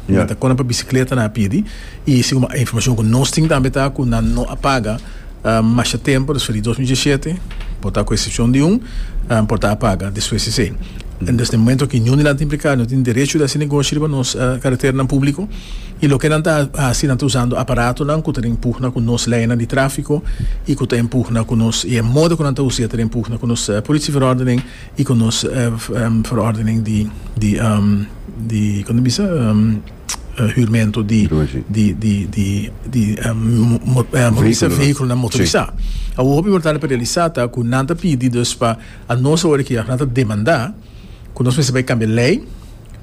Mi ta kona pa bicicleta nan a pidi y si como informacion cu nos tin tambe ta cu nan no a paga masha tempo despues di dos mil diesisiete, por ta cu excepcion di un, por ta a paga despues esey. Entonces den momento cu niun di nan ta implica no tin derecho di haci negoshi riba nos carreteranan publico y loke nan ta haci nan ta usando aparatonan cu ta empugna cu nos leinan di trafico y cu ta empugna cu nos y e modo cu nan ta usa ta empugna cu nos politie verordenen. y con nos verordening di con ta bisa huurmento di vehiculonan motorisa. Awo hopi importante pa realisa ta cu nan ta pidi dus pa anos awor aki nan ta demanda cu nos mester bay cambia ley.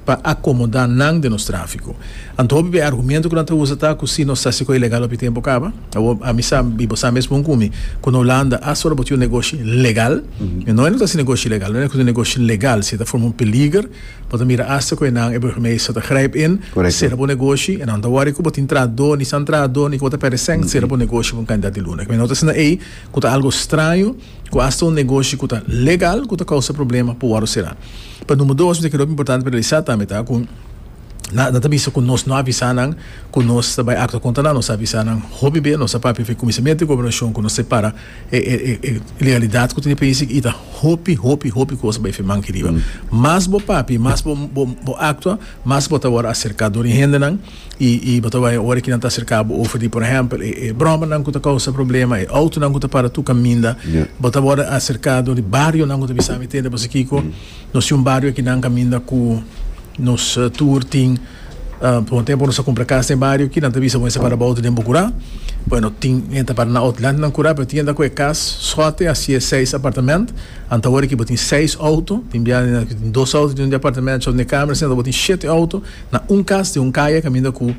pa akomodá nan den nos tráfiko. Anto hopi p'e argumento ku nan ta usa ta ku si nos ta hasi ku e legal hopi tempu kaba. Awor, ami sa, i bo sa mes bon ku mi, ku na Hulanda aswor a bo tin un negoshi legal. I no e no ta hasi negoshi ilegal, no e ku ta hasi negoshi legal. Si e ta forma un peliger, bo ta mira asta ku e nan, e burgemeester ta grijp in, sera bo negoshi. E nan no ta wòri ku bo tin trahadó, ni san trahadó, ni ku bo ta pèrdè sèn. Sera bo negoshi pa un kantidat di luna. Kende no ta hasi na ei, ku ta algu straño. cu hasta un negoshi cu ta legal cu ta causa problema por wordo cera. Pa number dos mi ta kere oca importante pa realisa tambe ta cu na na ta bisa cu nos no a avisa nan cu nos ta bay actua contra nan, nos a avisa nan hopi bey, nos a papia fin cuminsamiento di gobernacion cu nos separa e e e e legalidad cu tin e país y ta hopi hopi hopi cosa bay fin manke riba. Mas bo papia y mas bo bo bo actua mas bo ta wor acerca dor di hendenan. i i bo ta bai ora ki nan ta aserka bo over di por ehempel e e bromanan ku ta kousa problema e outonan ku ta para tur kaminda Ya. bo ta wòrdu aserka dor di barionan ku ta bisa mi tende pasobra kiko nos tin un bario aki nan kaminda ku nos eh, tur tin ah, por un tempu nos a kumpra kas den e bario aki nan ta bisa bo mester para bo outo den Bukurá bueno tin hende ta para nan outo delante nan Kurá pero tin hende ku e kas sòte a siye seis apartament anta ora ki bo tin seis outo tin biaha nan tin dos outo den un departamentshou den e kamernan sino bo tin shete outo Na un cas di un caya caminda cu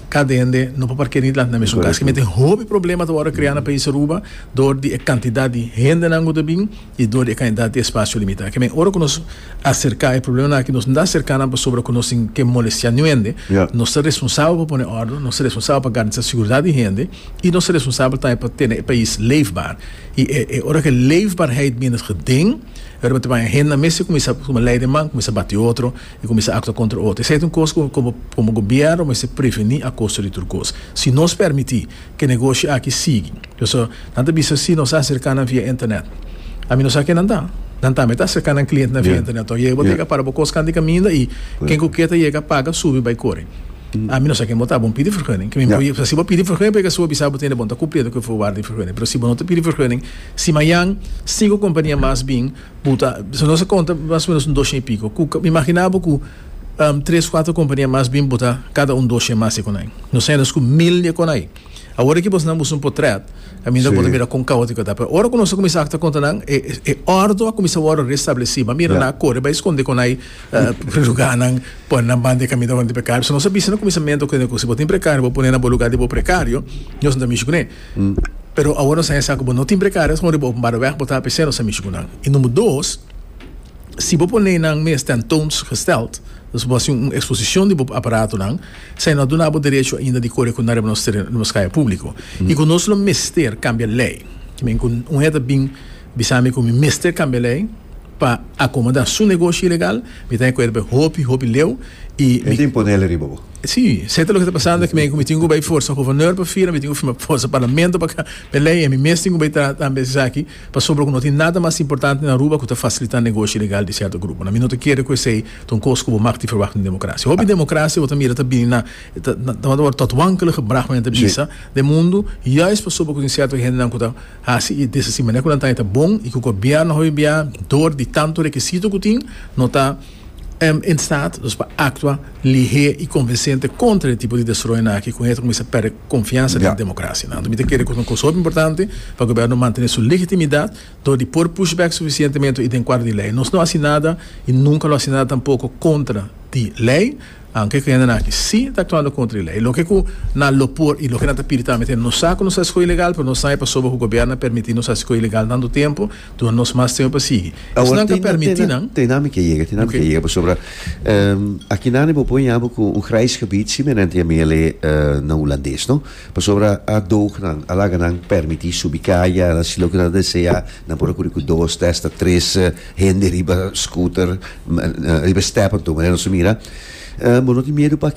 cada hende no por parkera ni dlante na mesun cas. Esaki meten hopi problema ta worde crea na pais Aruba dor di e cantidad di hendenan cu ta bin y dor di e cantidad di espacio limita. Kiemen ora cu nos acerca e probleman aki nos no a cerca nan pasobra cu nos tin ke molestia niun hende. Nos ta responsabel pa pone orde, nos ta responsabel pa garantisa seguridad di hende y nos ta responsabel tambe pa tene e pais leefbaar. Y e ora cu e leefbaarheid minder gedenk, Riba te banja hendenan mes a cuminsa lei de man, cuminsa bati otro. I kuminsá aktua kontra otro. Esei ta un kos ku komo komo gobièrnu mester prevení a kosta di tur kos. Si nos pèrmití ku e negoshi aki sigui, pasobra nan ta bisa si nos a aserká nan via Internet. Ami no sa ke nan ta. Nan tambe ta aserká nan kliente nan via Internet tok. Yega bo ta yega para bo kos kanta di kaminda i ken ku ke ta yega paga subi bai kore. Ami no sa ken bo ta. Bon pidi fergùning. Ke mi por yega. Si bo pidi fergùning por yega si bo bisa bo tende bon ta kumpli edu ke bo wòrdu di fergùning. Pero si bo no ta pidi fergùning, si mayan sinku kompania mas bin, Bo ta bisa nos a konta mas o menos un doshen i piko ku mi imaginá bo ku tres kuater kompania mas bin botá kada un doshen mas di konai. Nos ta hende ku mil di e konai. Awor aki bosnan busa un potrèt kaminda bo ta mira kon kaótiko ta. Pero ora ku nos a kuminsá ta konta nan e e òrdu a kuminsá wòrdu restablesí. Bo a mira nan a kore bai skonde konai pri lugánan, pone nan banda e kaminda wòrdu prekario. So nos a bisa na kuminsamentu ku hende ku si bo tin prekario bo pone nan bo lugá di bo prekario, Dios no ta mishi kuné. Pero awor nos a hesá ku bo no tin precario kon riba openbare wèg bo ta p'esei nos a mishi ku nan. I number dos, si bo pone nan mes tentoons gesteld, dus bo a hasi un eksposishon di bo aparatonan, esei no a duna bo derecho ainda di kore ku nan riba nos teren, riba nos kaya públiko. I ku nos lo mester kambia lei, ki men ku un hende ta bin. Bisa mi ku mi mester kambia lei pa akomoda su negoshi ilegal. Mi ta rekuerda hopi, hopi leu i mi. E ta impone lei riba bo. Si, se ta loke ta pasando ku mi, ku mi tin ku bai forsa governor pa firma, mi tin ku firma forsa parlamento pa kambia lei i mi mes tin ku bai trata tambe di esaki pasobra ku no tin nada mas importante na Aruba ku ta fasilitá negoshi ilegal di sierto gruponan. Mi no ta kere ku esei ta un kos ku bo mag di verwagt di un demokrasia. Hopi demokrasia bo ta mira ta bini na ta wòrdu tòt wankelige braha ku nan ta bisa den mundu, juist pasobra ku tin sierto hendenan ku ta. Hasi i desa si manera ku nan ta eta bon i ku gobièrnu hovindia dor di tantu rekisito ku tin no ta en stat dus pa aktua lihé i konvensente kontra e tipo di destroyonan aki ku hende ta kuminsá pèrdè konfiansa den demokrasia. Anto mi ta kere ku es un kos hopi importante pa gobièrnu mantené su legitimidat dor di por push bèk sufisientemente i den kuadro di lei. Nos no hasi nada i nunka lo hasi nada tampoko kontra di lei. Aunke ku hendenan aki si ta aktuando kontra e lei, loke ku nan lo por i loke nan ta pidi tambe ta nos sa ku nos hasi kos ilegal, pero nos sabe pasobra ku gobièrnu a permití nos hasi kos ilegal tantu tempu, duna nos mas tempu pa sigui. I si nan ka permití nan? Te nan mi ke yega, te nan mi ke yega pasobra aki nan e por pon yabu ku un grijs gebied simerente a mele na hulandes, no? Pasobra a doog nan, a laga nan permití subi kaya, nan hasi loke nan ta deseá, nan por a kuri ku dos te hasta tres. Hende riba scooter riba step anto manera nos a mira bo no tin miedu paki